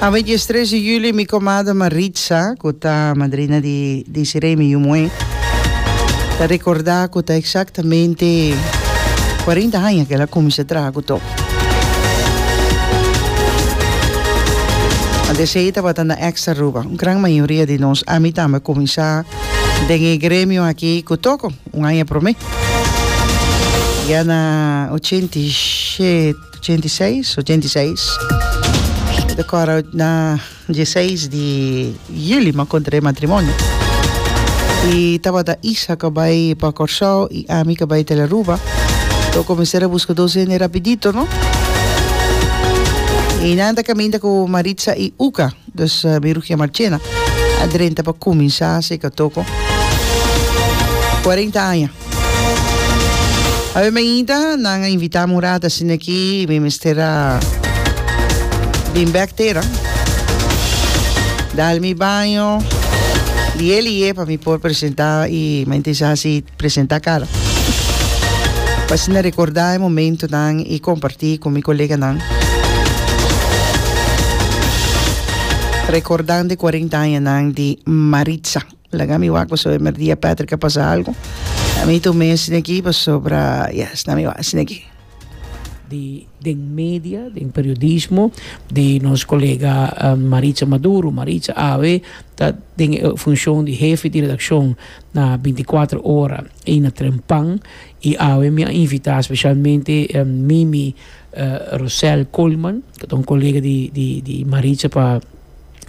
A veinties tres di juli mi komada Maritza ku ta madrina di Desiree mi yu muhé ta rekordá ku ta eksaktamente kuarenta aña ku el a kuminsá traha ku to. Ante esei e tabata na Extra Aruba. Un gran mayoria di nos ami tambe a kuminsá den e gremio aki ku Toko un aña promé. Ya na ochenta i shet Ochenta i seis, ochenta i seis. Ta kòrda na dieseis di yuli mi a kontr'é matrimonio. I tabata Isaac a bai pa Kòrsou i ami k'a bai tel Aruba. Lo kuminsá ta buska dos hende rapidito, no. I nan ta kaminda ku Maritza i Uka. Dus biru ke Marchena a drenta pa kuminsá seka toko kuarenta aña. Awe mainta nan a invitá Murat asin'akí mi mester a bin bèk tera, dal mi baño lié lié pa mi por presentá i mainta i sa hasi presenta cara. Pa asina recorda e momentonan y comparti cu mi coleganan. Recordando e cuarenta añanan di Maritza. Laga mi wak pasobra e merdia Patrick a pasa algo. A mi tu mes asina aki pasobra ya esnan mi wak asina aki. di den media, den periodismo di nos colega Maritza Maduro. Maritza awe ta den e funcion di hefe di redaccion. Na binticuatro ora ey na tren pan y awe mi a invita specialmente Mimi Rosel Coleman cu ta un colega di di di Maritza pa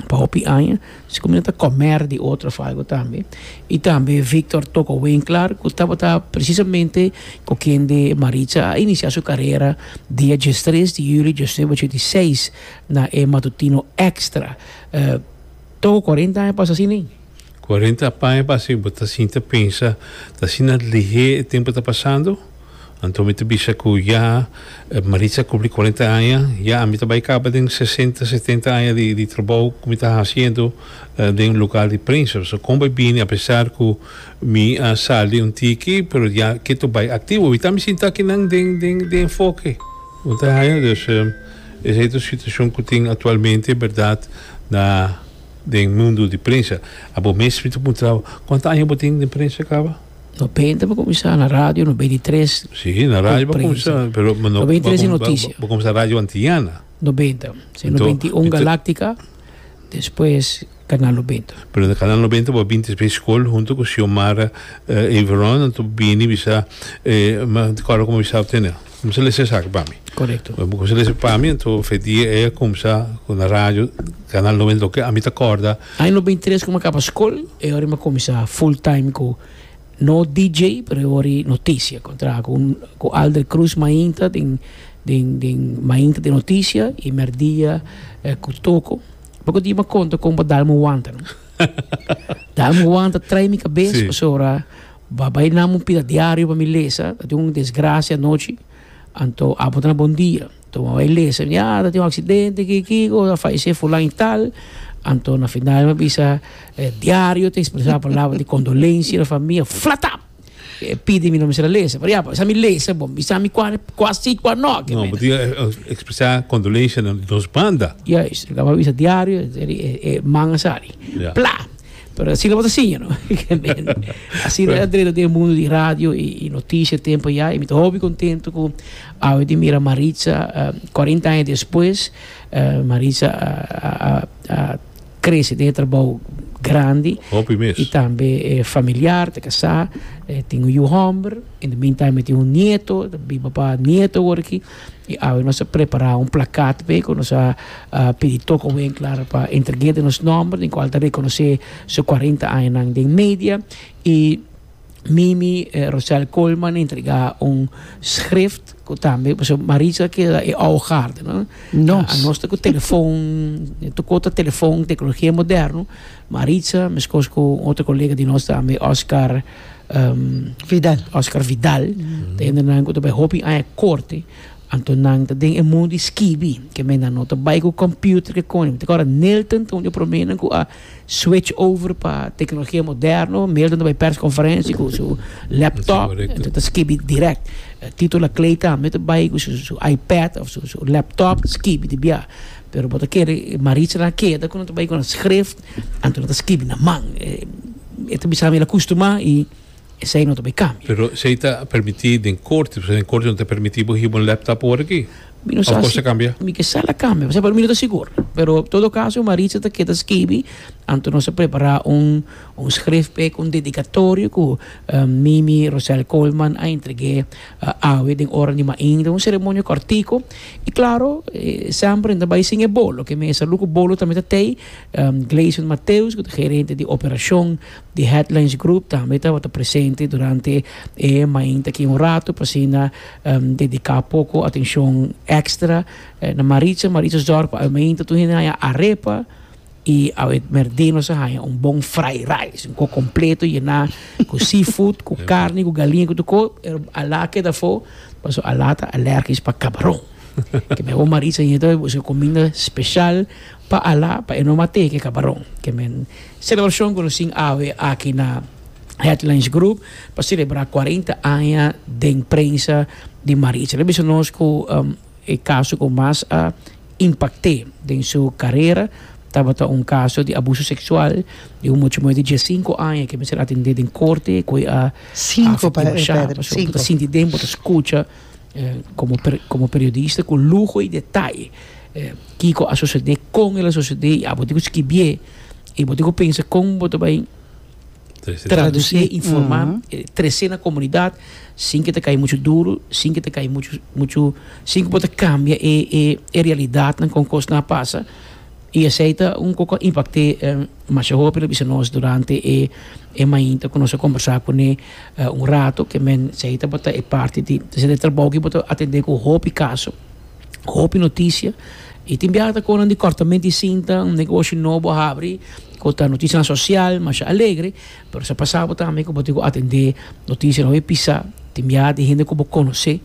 pa hopi aña asina mi no ta comer di otro of algo tambe y tambe Victor Toco Winkler cu tabata precisamente cu kende Maritza a inicia su carera dia diestres di julio diesnuebe ochenta y seis na e matutino extra Toco cuarenta aña pasa asina. Cu Arente a paña pa hasi bo ta sinti pensa ta asina lihé e tempu ta pasando? Anto mi ta bisa cu ya Maritza a cumpli cuarenta aña, ya ami ta bay caba den sesenta, setenta aña di trabou cu mi ta haciendo den lugar di prensa. So con bay bini apesar cu mi a sali un tiki pero ya ketu bay activo. Awita mi sinta akinan den enfoke. Bo ta haña? Dus esey ta un situacion cu tin actualmente, berdad, na. den mundu di prensa a bo mes mi ta puntra bo kuanta aña bo tin den prensa kaba? Nobenta bo kuminsá na radio nobenta i tres si na radio bo kuminsá pero nobenta i tres di notisia bo kuminsá radio antiñana nobenta si nobenta i un galaktika despues kanal nobenta pero na kanal nobenta bo a binti despues skol huntu ku xiomara everon anto bo bini bisa e ma di kòrda ku mi bisa bo tene. Kumsa lesa esaki pa mi. Korekto. Wen bo kumsa lesa pa mi anto fe dia ei a kumsa ku na radio Kanal Nobenta i dos ke a mi ta kòrda. Aña nobenta i tres ku mi a kaba skol e ora mi a kuminsá full time ku no DJ pero e wòrdu notisia ku a traha ku ku Alder Cruz mainta den den den mainta di notisia i mèrdia ku Toko. Bai ku dia mi a konta kon bo a dal mi wanta no. Dal mi wanta trai mi kabes pasobra. Ba bai nan bo pida diario pa mi lesa, ta tin un desgracia anochi, anto abo ta na bon dia, anto bo bai lesa mi, ah ta tin un accidente aki kiko, a fayece fulan y tal, anto na final mi a bisa e diario ta expresa palabra di condolencia na famia, flatap! E pidi mi no mi ser a lesa, pero ya pues esa mi lesa, bo bisa mi cua cua si cua no aki No, bo mende. tin e expresa condolencia na nos banda. Juist, e caba bisa diario e man a sali, Ya. pla! Pero asina bo ta siña no asina e André ta den e mundo di radio y y noticia e tempo ya y mi ta hopi contento cu awe tin mira Maritza cuarenta aña despues Maritza a crece den e trabou grandi Hopi mes. y tambe e familiar ta casá tin un yu homber in the meantime e tin un nieto ta biba pa nieto awor aki. I awe nos a prepará un plakat p'e ku nos a pidi tok awe en klar pa entreg'é den nos nòmber den kual ta rekonosé su kuarenta añanan den media. I Mimi Rosel Coleman a entregá un schrift ku tambe pasobra ku Maritza a keda e ahogaarder, no? Nos. Nos ta ku telefon, tokó ta telefon, teknologia moderno. Maritza, meskos ku un otro kolega di nos tambe, Oscar. Vidal. Oscar Vidal, ta hende nan ku ta bai hopi aña korte, anto nan ta den e mun di skibi, ke men nan no ta bai ku kòmpiuter ke kòne. Mi ta kòrda Nilton ta un di e promenan ku a switch over pa teknologia moderno, Nilton ta bai pèrskonferensi ku su lèptòp, ento ta skibi dirèk. Tito Laclay tambe ta bai ku su iPad òf su lèptòp ta skibi di biaha. Pero bo ta kere Maritza na keda ku nan ta bai ku nan skrif, anto nan ta skibi na man. E ta bisa mi el a custumá y esey no ta bay cambia. Pero esey ta permití den corte, pasobra den corte no ta permití bo hiba un laptop awor aki. Mi no sa si. Of cos ta cambia? Mi ke sa la cambia, pasobra mi no ta sigur. Pero todo caso Maritza ta keda skibi, anto nos a prepará un un schrift p'e cu un dedicatorio cu Mimi Rosel Coleman a entreg'é awe den ora di mainta. Un ceremonia cortico y claro, e sèmpere no ta bay sin e bolo, ke mesa lu cu bolo tambe ta tey. Gleison Mateus, cu ta gerente di operacion di Headlands Group, tambe tabata presente durante e mainta aki un rato pa asina dedica poco atencion extra na Maritza. Maritza's dorp awe mainta tur hende a haya arepa y awe merde nos a haya un bon fried rice, un coc completo yena cu seafood, cu carne, cu galinha, cu tur co. Ala keda afo pasobra Ala ta alergisch pa cabaron. Ke mehor Maritza hinga ta busca cuminda special. Pa Alá, pa E no mat'é ke kabaron. Kemen. Selebrashon ku nos tin awe aki na Headlands Group pa selebrá kuarenta aña den prensa di Maritza. Lo bisa nos ku e kaso ku mas a impakt'é den su karera tabata un kaso di abuso seksual di un muchamuey di diesinku aña ke a mester atendé den korte ku e a Sinku, Padre Pedro, sinku. Sinti den bo ta skucha. Komo periodista ku luho i detaye kiko a sosede, kon el a sosede i abo tin ku skibie i bo tin ku pensa kon bo ta bai tradusé i informá tresé na komunidat sin ke ta kai muchu duru, sin ke ta kai muchu muchu sin ku bo ta kambia e e e realidatnan kon kosnan a pasa i esei ta un koko a impakte masha hopi lo bisa nos durante e mainta ku nos a kombersá kuné. Un rato ke men sei tabata e parti di esei trabou ki bo ta atendé ku hopi kaso, hopi notisia i tin biaha ta konan di kòrtamentu di sinta unda ku oshi no bo a habri ku ta notisianan sosial masha alegre pero sa pasa bo tambe ku bo tin ku atendé notisia no e pisá tin biaha tin hende ku bo konosé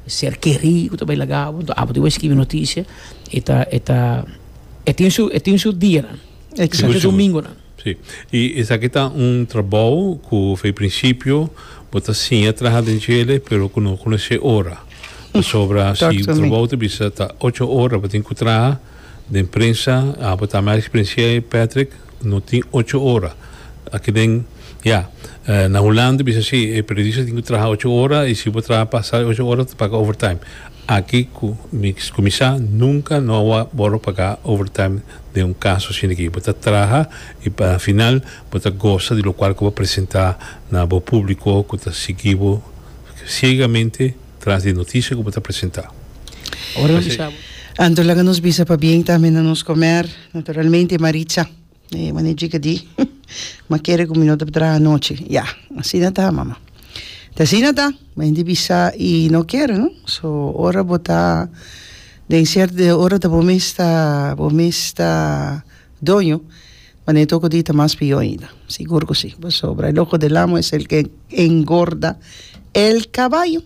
ser kerí ku ta bai laga bo enton abo tin bo skibi notisia e ta e ta e tin su e tin su dianan e tin su domingunan. Sí. I esaki ta un trabou ku fei prinsipio bo ta siña traha den djele pero ku no konosé ora. Pasobra si Talk to me. trabou ta bisa ta ocho ora bo tin ku traha den prensa, a bo ta mas eksperensiá ei Patrick, no tin ocho ora. Aki den, ya, na Hulanda bisa si e periodista tin ku traha ocho ora i si bo traha pasa e ocho ora ta paga overtime. Aki cu mi cuminsa nunca no a worde paga overtime den un caso asina aki. Bo ta traha y pa final bo ta gosa di locual cu bo a presenta na bo publico cu ta sigui bo ciegamente tras di e noticia cu bo ta presenta. Anto laga nos bisa pabien tambe na nos comer naturalmente Maritza. E mane djiga di ma kere ku mi no ta por traha anochi ya asina ta mama ta asina ta bo hende bisa i no kere no so ora bo ta den cierto de ora ta bo mes ta bo mes ta doño mane ta oko di ta mas pio ainda sigur ku si pasobra el ojo del amo es el que engorda el caballo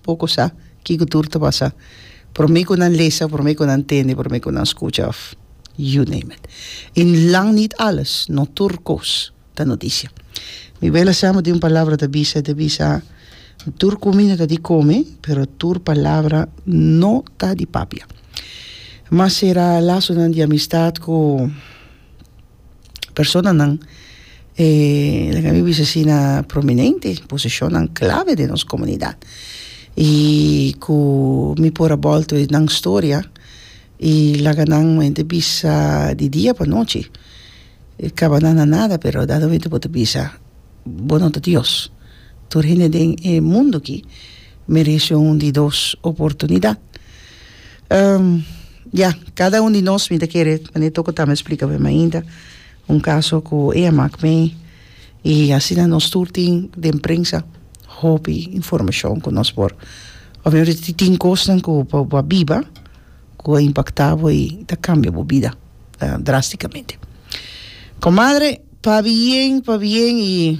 Poko sa kiko tur ta pasa prome ku nan lesa, prome ku nan tende, prome ku nan skucha òf you name it. I lang nit alles, no tur kos ta notisia. Mi bela Sam a tin un palabra ta bisa, e ta bisa, Tur kumina ta di kome, pero tur palabra no ta di papia. Mas sera lasonan di amistat ku personanan e laga mi bisa si na prominente posishonnan klave den nos komunidat i ku mi por a bòlta nan storia i laga nan mo inter bisa di dia pa nochi e kaba nan na nada pero a dado momento bo ta bisa bo no ta dios tur hende den e mundu aki merese un di dos oportunidat. Ehm, ya, cada un di nos mi ta kere, mane Toko ta me splica p'e mainta, un caso cu ey a mak me, y asina nos tur tin den prensa hopi informacion cu nos por, obviamente tin, tin cosnan cu bo, bo a biba, cu a impacta bo y ta cambia bo bida drasticamente. Comadre, pa bien, pa bien y.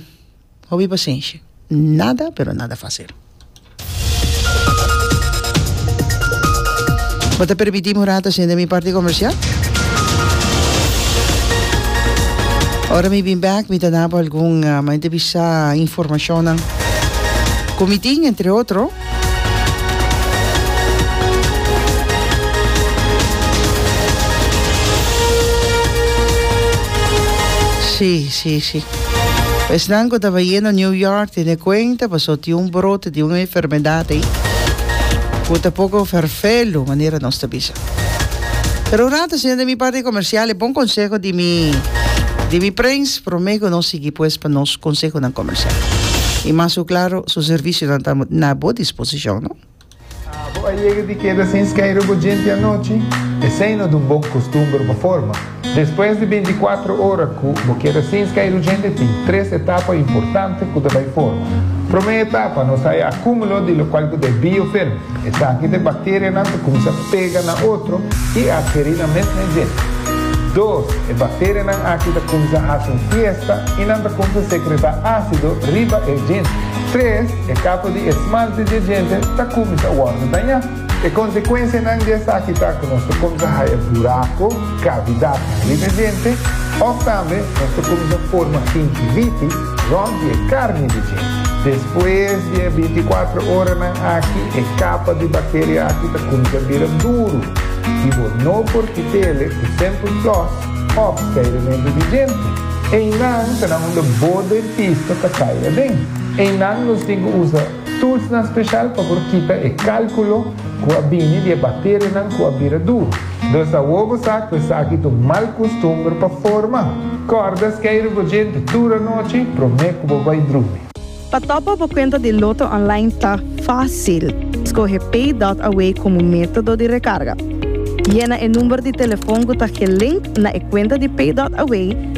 Hopi pasenshi. Nada pero nada fasil. Bo ta permití mi un rato sinta mi parti komersial? Ora mi bin bèk mi ta dabo algun mayormente bisa informashonnan ku mi tin entre otro. Sí, sí, sí. Esnan cu taba yendo New York tiene cuenta, pasó ti un brote di un enfermedad ahí. Cu tampoco vervelo, manera nos te bisa. Pero un rato, señor de mi parte comercial, bon consejo di mi, di mi prins, Prome cu nos sigui pues pa nos consehonan comercial. Y mas cu claro, su servicionan ta na bo disposicion, no? Abo a yega di keda sin skeiru bo djenti anochi? Esei no dun bon costumber pa forma. Despues di binticuatro ora cu bo keda sin skeiru djenti tin tres etapa importante cu ta bay forma. Prome etapa nos haya acumulo di locual cu ta e biyo firme. Esaki ta e bacterianan ta cuminsa pega na otro y adheri na mesme djel. Dos, e bacterianan aki ta cuminsa haci un fiesta y nan ta cuminsa secreta acido riba e djel. Tres, e capa di esmalte di e djente ta cuminsa wordo daña. E consecuencianan di esaki ta cu nos ta cuminsa haya buraco, cavidadnan, riba e djente of tambe nos ta cuminsa forma gingivitis, Rompi e karni di dje. Despues di e binticuatro oranan aki, e capa di bacteria aki ta cuminsá bira duru i bo no por kit'ele cu Simple Floss of Seirementu di Djente. Einan ta na unda bo dentista ta cay aden. Einan nos tin cu usa. Toolsnan special pa por kita e calculo cu a bini di e bacterianan cu a bira duru. Dus awor bo sa cu esaki ta un mal custumber pa forma. Corda skei rugogente tur anochi prome cu bo bay drumi. Pa topa bo cuenta di Lotto online ta facil. Scoge PayDotAway como metodo di recarga. Yena e number di telefon cu ta gelink na e cuenta di PayDotAway.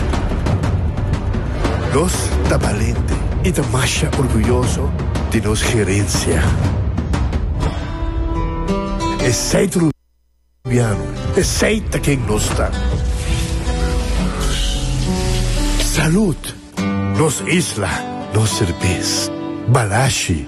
Nos ta balente i ta masha orguyoso di nos gerensia. E seit rubiano, e seit ta ken nos ta. Salud, nos isla, nos serbes. Balashi.